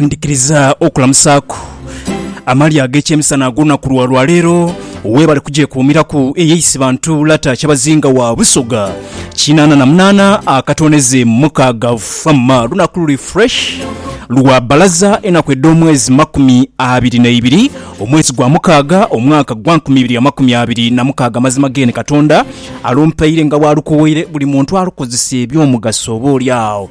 ndikiriza okulamusaaku amalya ag'ekyemisana ag'olunaku lwa lwaleero weebale kugyekuumiraku eyeisi bantu Lata Kyabazinga wa Busoga kinaana na munaana akatooneze mukaaga Fama lunaku luli fresh lwa bbalaza enaku edh'omwezi makumi abiri n'eibiri omwezi gwa mukaaga omwaka gwa nkumi ibiri amakumi abiri na mukaaga amazima geene Katonda alumpaire nga bw'alukowoire buli muntu alukozese eby'omugaso oba oli awo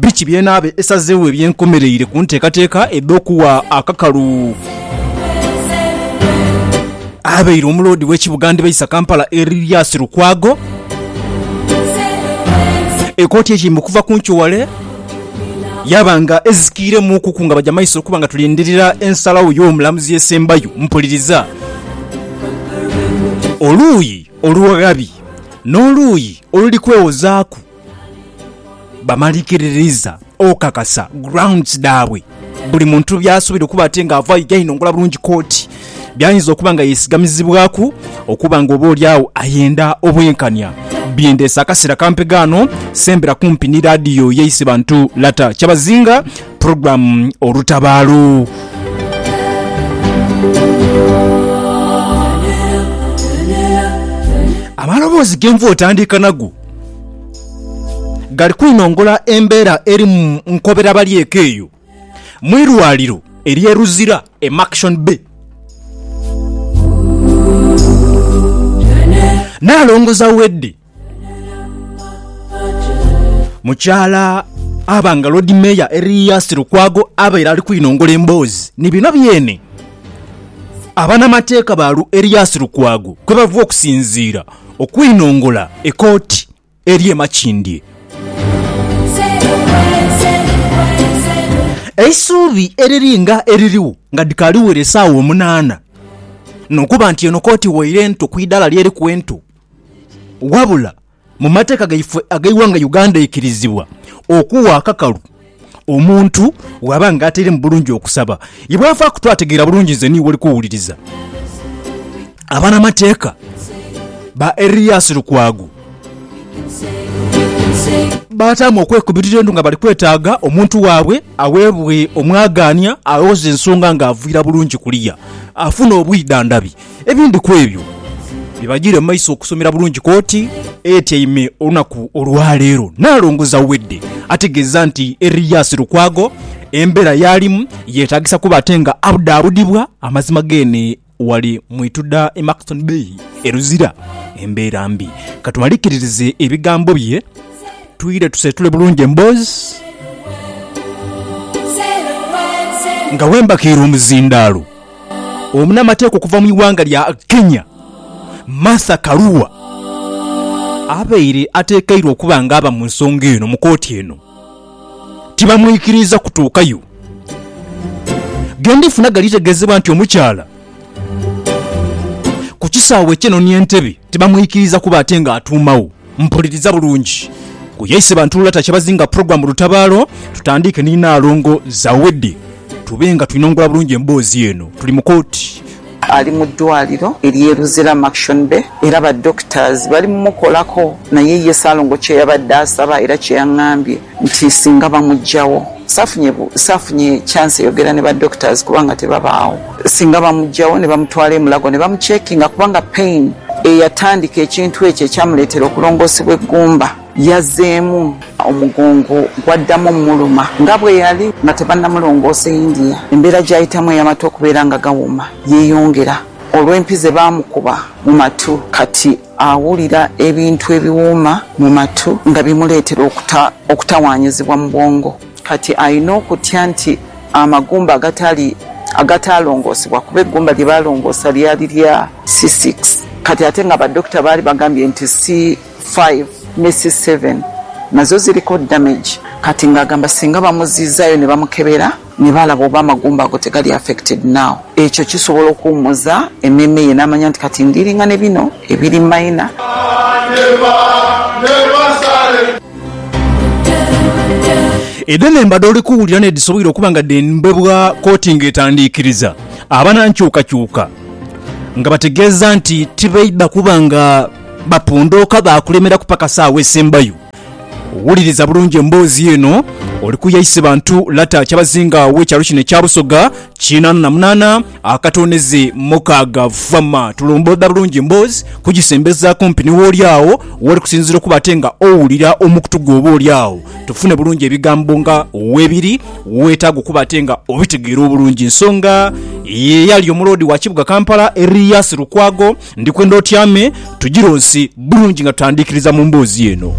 Biki by'enaaba esazeegho eby'enkomereire ku nteekateeka edh'okuwa akakalu abaire omuloodi w'ekibuga Ndibaisa Kampala Erias Lukwago? Ekooti eyeime okuva ku nkyo wale yaaba nga ezikiiremuukuku nga baja maiso okuba nga tulindirira ensalagho y'omulamuzi esembayo. Mpuliriza oluuyi oluwaghabi n'oluuyi oluli kwewozaaku. bamalikiririza okakasa grounds dhaabwe buli muntu byasuubira okuba ate nga ava aidha inongola bulungi kooti byayinza okuba nga yesigamizibwaku okuba nga oba olyawo ayenda obwenkanya byendeese akaseera kampega ano sembera kumpi ni radiyo yaise bantu lata kyabazinga program olutabaalo amaloboozi genva otandiika nago gali kwinongola embeera eri mu nkobera balyeka eyo mu irwaliro erye Luzira e Maction Bay Nalongo Zawedde mukyala aba nga Lord Mayor Erias Lukwago abaire ali kwinongola emboozi ni bino byene abanamateeka ba Erias Lukwago kwebava okusinziira okwinongola ekooti eri e Makindye. Eisuubi eriri nga eriligho nga dhikaali wera esaawa omunaana n'okuba nti eno kooti waire nto ku idaala ly'eriku ento. Wabula mu mateeka gaife ag'eighanga Uganda eikirizibwa okuwa akakalu. Omuntu bw'aba nga atairemu bulungi okusaba, ye bw'avaaku twategeera bulungi nze niiwe oli kuwuliriza. Abanamateeka ba Erias Lukwago baataamu okwekubirira endhu nga bali kwetaaga omuntu waabwe aweebwe omwagaanya awoze ensonga ng'avwira bulungi kuliya afune obwidhandhabi. Ebindi ku ebyo bibajiire mu maiso okusomera bulungi kooti etyaime olunaku olwaleero. Nalongo Zawedde ategeeza nti Erias Lukwago embeera yaalimu yetagisa kuba ate nga abudaabudibwa amazima geene wali mu ituda e Maxton Bay e Luzira embeera mbi. Katumalikiririze ebigambo bye twire tuseetule bulungi emboozi nga bwembakiire omuzindaalo. Omunamateeka okuva mu ighanga lya Kenya, Martha Karua abaire atekeirwe okuba nga aba mu nsonga eno mu kooti eno tibamwikiriiza kutuukayo. Gendifuna galitegezebwa nti omukyala ku kisaawe kye nonia entebe. Tibamwikiriza kuba ate nga atuumagho. Mpuliriza bulungi. Ku ye Isebantu Lulata Kyabazinga Program Lutabaalo, tutandiike ni Nnaalongo Zawedde tube nga twinongula bulungi emboozi eno. Tuli mu kooti. Ali mu ddwaaliro ery'e Luzira Maction Bay era ba doctors bali mu mukolako naye ye Ssaalongo kye yabadde asaba era kye yang'ambye nti singa bamugyawo, saafunye saafunye chance yogera ne ba doctors kubanga tebabaawo, singa bamugyawo ne bamutwala e Mulago ne bamucheckinga kubanga pain eyatandika ekintu ekyo ekyamuleetera okulongoosebwa eggumba yazzeemu, omugongo gwaddamu omuluma nga bwe yali nga tebannamulongoosa e India, embeera gy'ayitamu ey'amatu okubeera nga gawoma yeeyongera olw'empi ze baamukuba mu matu kati. Awulira ebintu ebiwuuma mu matu nga bimuleetera okuta okutawaanyizibwa mu bwongo. Kati alina okutya nti amagumba agatali agataalongoosebwa, kuba eggumba lye baalongoosa lyali lya C6 kati ate nga badokita baali bagambye nti C5 ne C7 nazo ziriko damage kati ng'agamba singa bamuziizaayo ne bamukebera, Ni balaba oba amagumba ago tegali affected now. Ekyo kisobola okuwumuza emeeme ye namanya nti kati ndilinga ne bino ebiri minor. Edho enhemba dh'oli kuwulira n'edhisoboire okuba nga dhembebwa kkooti ng'etandiikiriza abanankyukakyuka nga bategeeza nti tibaidha kuba nga bapondooka baakulemera kupakasa agho esembayo. Wuliriza bulungi emboozi eno. Oli kuya ise bantu Lata Kyabazinga w'ekyalo kino ekya Busoga kinaana na munaana akatooneze mukaaga. Vama tulomboodha bulungi emboozi kugisembeza kumpi ni wooli agho w'oli kusinziira okuba ate nga owulira omukutu gwo oba oli agho tufune bulungi ebigambo nga webiri weetaaga okuba ate nga obitegeera obulungi. Ensonga ye yali omuloodi wa kibuga Kampala Erias Lukwago Ndikwenda otyame tujironsi bulungi nga tutandikiriza mu mboozi eno.